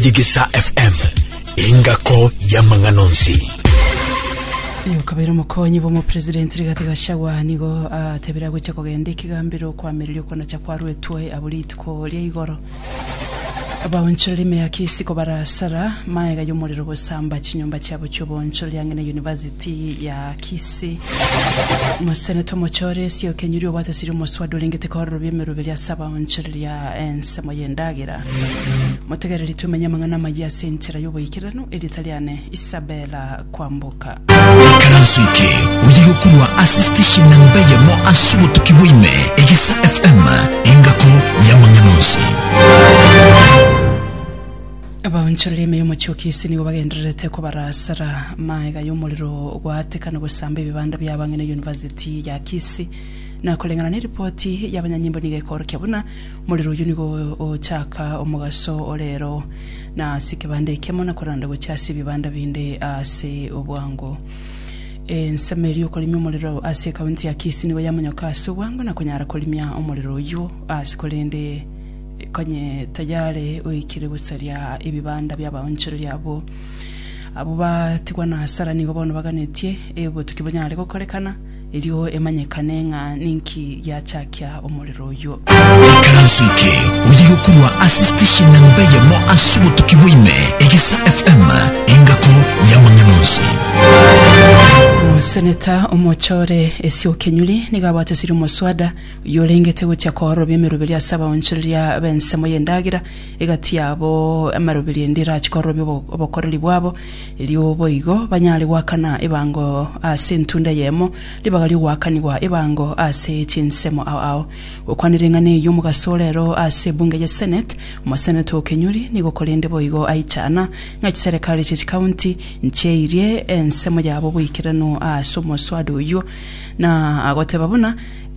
Digisa FM, engako y'amang'ana onsi. Oyo kabere omokonyi bw'omopresidenti Rigathi Gachagua nigo atebire agochia kogenda ekegambero kwamireria okonacha kwa Rwetwae abwo rituko ria igoro. Abaonchoreri ime ya Kisiko barasara maega y'omorero gosamba chinyomba chiabo chi'oboonchoreri ang'e na University ya Kisii. Omoseneta omochore Esio Kenyuri obwatesirie omoswada orengete korora obi emeroberi ase abaonchoreri a ensemo y'endagera. Motegereri twemenye amang'ana amayia ase enchera y'oboikeranu, erieta riane Isabela kwamboka. Ikaranso eke oye gokorwa ase station namba eyemo ase obotuki bwaime egisa FM engako y'amang'ana onsi. Abaonchoreri ime y'omochie o Kisii nigo bagendererete kobarasera maega y'omorero gwatekana gosamba ebibanda bi'abang'ina University ya Kisii. Na koreng'ana neripoti y'abanyanyimbo nigo ekoorokia buna Morero oyio nigo ochaaka omogaso o reero na ase ekebanda ekemo na koranda gochia ase ebibanda binde ase obwango. Ensemo eria okorimia omorero ase ekaunti ya Kisii nigo yamonyoka ase obwango na konyara korimia omorero oyio ase korende konye tayare oikire gosaria ebibanda bia abaonchoreria abwo. Abwo batigwa na hasara nigo bono baganetie obotuki bonyare gokorekana. erio emanyekane ng'a ninki giachakia omorero oyio. Ekaranso eke oye gokorwa ase station namba eyemo ase obotuki bwaime, Egesa FM, engako y'amang'ana onsi. Omoseneta omochore Esio Kenyuri nigo abwate esiri omoswada oyio orengete gochia kooroba emeroberio ase abaonchoreria b'ensemo y'endagera egati yabo, amaroberio ende erache koorobe obo- obokoreri bwabo erio boigo banyare goakana ebango ase entunda eyemo, ribaga ri'ogoakanigwa ebango ase chinsemo ao ao. Gokwana ring'ana eyio omogaso ore ero ase ebunge ye Senate, omoseneta o Kenyuri nigo korende boigo aichana ng'a chiserekari chie chikaunti nchieirie ensemo yabo boikeranu ase omoswada oyio, na agoteba buna,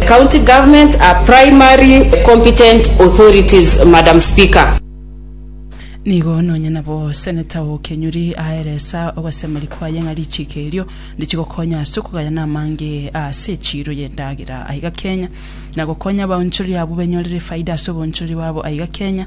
County governments are primary competent authorities, Madam Speaker. Nigo nonya nabo Senator o Kenyuri aeresa ogosemeri kwaye ng'a richiiko erio ndichigokonya ase okogayana amange ase echiiro y'endagera aiga Kenya, na gokonya abaonchori abwo benyorere efaida ase oboonchori bwabo aiga Kenya.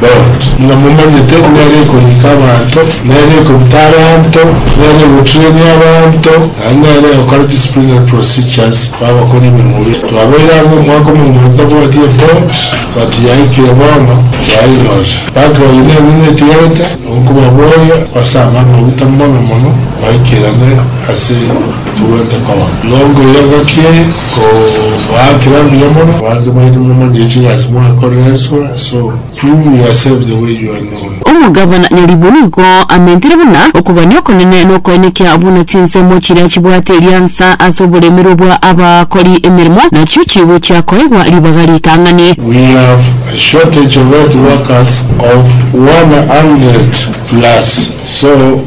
Daudi, ng'a momanyete nere ekorika abanto, nere ekobuta abanto, nere egoturania abanto, naende nere egokora disciplinary procedures kwabakori ememura. Twabeire amo omwaka omomoito bwati eport but yaikire bono twainyorire. Backlog nene netigarete nkobaboria ase amang'ana maguta mono mono maikerane ase togwete koba. Nonkoira ngaki eye Kobaakire mbuya mono, abange baito, momanye ekibe ase mwakorereswa, so you will accept the way you are known. Omogabana nyaribwe nigo amentire buna okogania okonene na okoenekia buna chinsemo chiria chibwate eriansa ase oboremerwe bwa abakori emeremo nachio chigochia koegwa ribaga ritang'ani. We have a shortage of health workers of one hundred plus so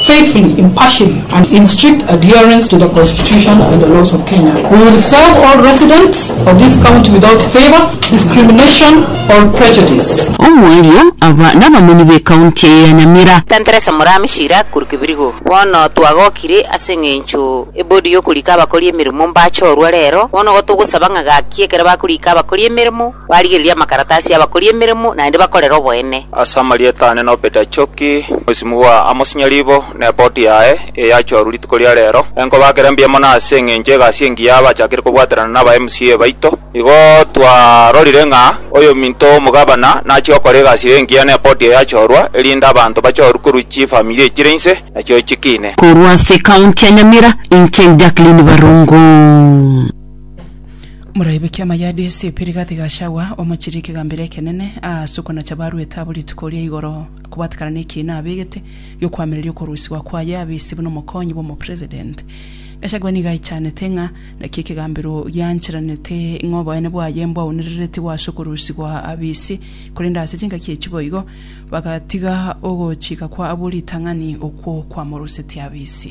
faithfully, impartially and in strict adherence to the Constitution and the laws of Kenya. We will serve all residents of this county without favour, discrimination or prejudice. Omwario, aba nabamoni b'ekaunti eye ya Nyamira. Tenteresa Murami Shira Kuru Kibirigo. Bono twagokire ase engencho ebodi yokorika abakori emeremo mbachorwa rero, bono igo togosaba ng'a gaki ekero bakorika abakori emeremo, Barigereria amakaratasi y'abakori emeremo naende bakorere oboene. Ase amarieta aane no Peter Choki, Mwesimi bwa Amos Nyaribo, ne boti yaye, eye yachorwa rituko ria rero. Enkoba akere mbuya mono ase eng'encho egasi engiya abachakire kobwaterana naba MCA baito. Igo twarorire ng'a oyominto omogabana nachia gokora egasi engiya ne boti eye yachorwa, erinde abanto bachorwe korwa chifamilia echire inse, nachio chiki ine. Korwa ase County ya Nyamira, inche Jacqueline Barongo. Moraibokie amayadi ase epiri gati ga Shawa omochirie ekegambero ekenene, aase okonacha barwete abwo rituko ria igoro kobwatekana nekiina abegete gi'okoamereria okorusigwa kwaye abe ise buna omokonyi bw'omopresident. Gachagua nigo aichanete ng'a naki ekegambero giancheranete ng'a oboene bwaye mbwaunerereti gwase okorusigwa abe ise, korende ase chingaki echio boigo bagatiga ogochika kwa abwo ritang'ani okwo kwamorusetie abe ise.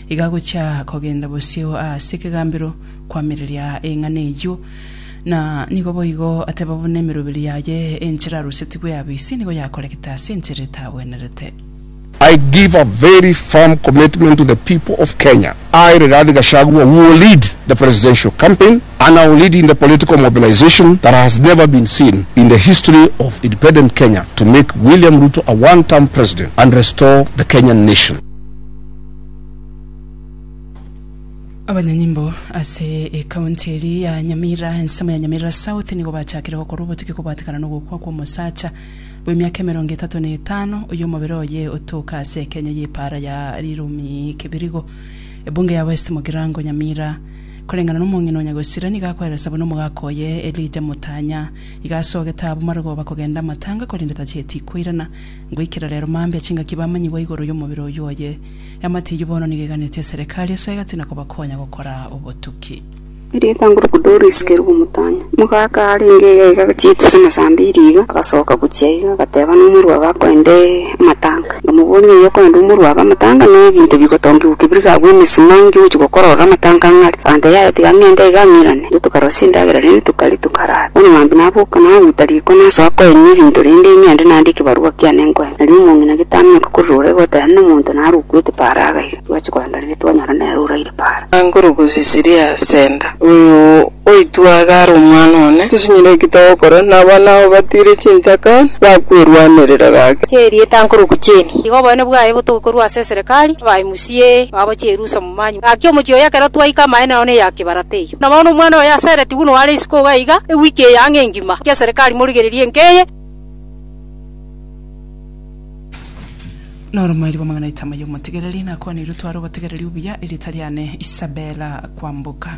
Igagochia kogenda bosio ase ekegambero kwamireria eng'ana eyio, na nigo boigo ateba buna emeroberi yaye enchera arusetigwe yabisi nigo yakoregete ase enchera etagwenerete. I give a very firm commitment to the people of Kenya, I Rigathi Gachagua will lead the presidential campaign and I will lead in the political mobilization that has never been seen in the history of independent Kenya to make William Ruto a one term president and restore the Kenyan nation. abanyanyimbo ase ekaunti eri ya nyamira ensemo ya nyamira south nigo bachakire gokora obotuki kobwatekana nogokwa kw'omosacha bw'emiaka emerongo etato na etano oyo omobere oye otoka ase ekenya y'epaara ya rirumi kibirigo ebunge ya west mogirango nyamira koreng'ana n'omong'ina o nyagosira nigo akweresa buna omogaka oye elija motanya iga asogete abwo marogoba kogenda amatanga korende tachieti koirana Goikera rero mambia chingaki bamanyigwa igoro y'omobere oyio oye. Eamate eyio bono nigo eganetie eserekari esuya egati na kobakonya gokora obotuki. Erio ekanguruka Doris keru bw'omotanya, omogaka arenge iga iga chitusi amasa amba iri iga, agasoka gochia iga, agateba nomorwabe akoende amatanga. Nkamobooria, Ng'ai okoenda omorwabe amatanga na ebinto bigotongigwa kebirigabwo emesumaa, nkigochia gokora orore amatanga ng'are? Aganteba, Yaya, tiga ng'ende iga ng'irane. Naintwe tokarosia endagera, naintwe tokaria, tokarara. Bono mambia naboke, naguta riko, nasoa koenia ebinto, rende ing'ende nande ekebarua kiane nkoe. Nario omong'ina getamenyeka korora oraiga goteena nomonto naro okwete Paara agaiga. Twachia kogenda riria twanyora nere oraire Paara. Angoro gose Siria Center. Oyo oito iga are omwana one. Tosinyire ki togokora na abana abo batiire chintaka na kwerwanerera gake? Chi'erieta nkorokwa chi'eni. Igo oboene bwaye botoke korwa ase eserekari, abae musie babo chi'erusa. Manywa gaki omochie oye ekero twaika amaene nao neya kibarata eyio. Na bono omwana oye asereti buna oare isiko iga iga ewiki eye ang'e engima. Inche serikari morigererie enka eye. Noro mwairi bw'amang'ana aito amaya omotegereri, nakwaneirwe tware obotegereri obuya, erieta riane Isabella kwamboka.